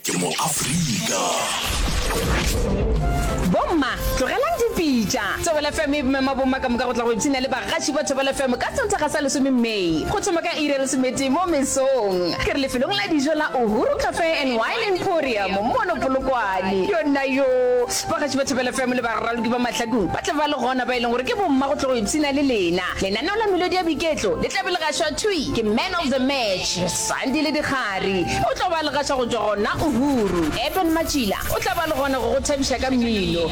Ke mo Afrika. Bomma tlogelang dipitša Thobela FM e mema bomma ka moka go tla go ipshina le bagaši ba Thobela FM ka Sontaga sa lesome May go thoma ka iri ya lesometee mo mesong. Ke re lefelong la dijo la Uhuru Cafe and Wine Emporium mono Polokwane. Yonnayoo! Bagaši ba Thobela FM le baraloki ba mahlakong ba tla ba le gona ba e leng gore ke bomma go tlo go ipshina le lena. Lenaneo la melodi ya boiketlo le tla be le gašwa thwi ke Man of the Match. Sandi le Dikgari o tlo ba legaša go tšwa gona Uhuru. Eben Matšila o tla ba le gona go go thabiša ka mmino.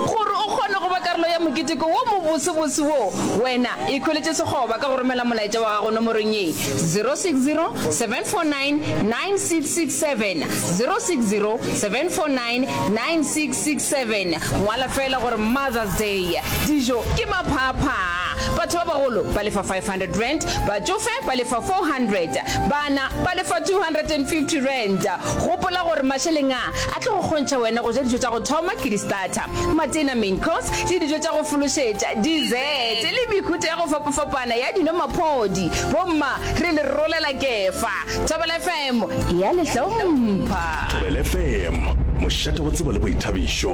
Gore o kgone go ba karolo ya moketeko wo mobosebose wo, wena ikhweletše sekgoba ka go romela molaetša wa gago nomorong ye, 0607499667, 0607499667. Ngwala feela gore Mother's Day, dijo ke maphaaphaa. Batho ba bagolo ba lefa R500, batšofe ba lefa R400, bana ba lefa R250. Gopola gore mašeleng a a tlo go kgontšha wena go ja dijo tša go thoma ke di-starter, matena, main course, le dijo tša go fološetša, dessert, le mehuta ya go fapafapana ya dino-maphodi. Bomma re le rolela kefa. Thobela FM e a le hlompha. Thobela FM, mošate wa tsebo le boithabišo.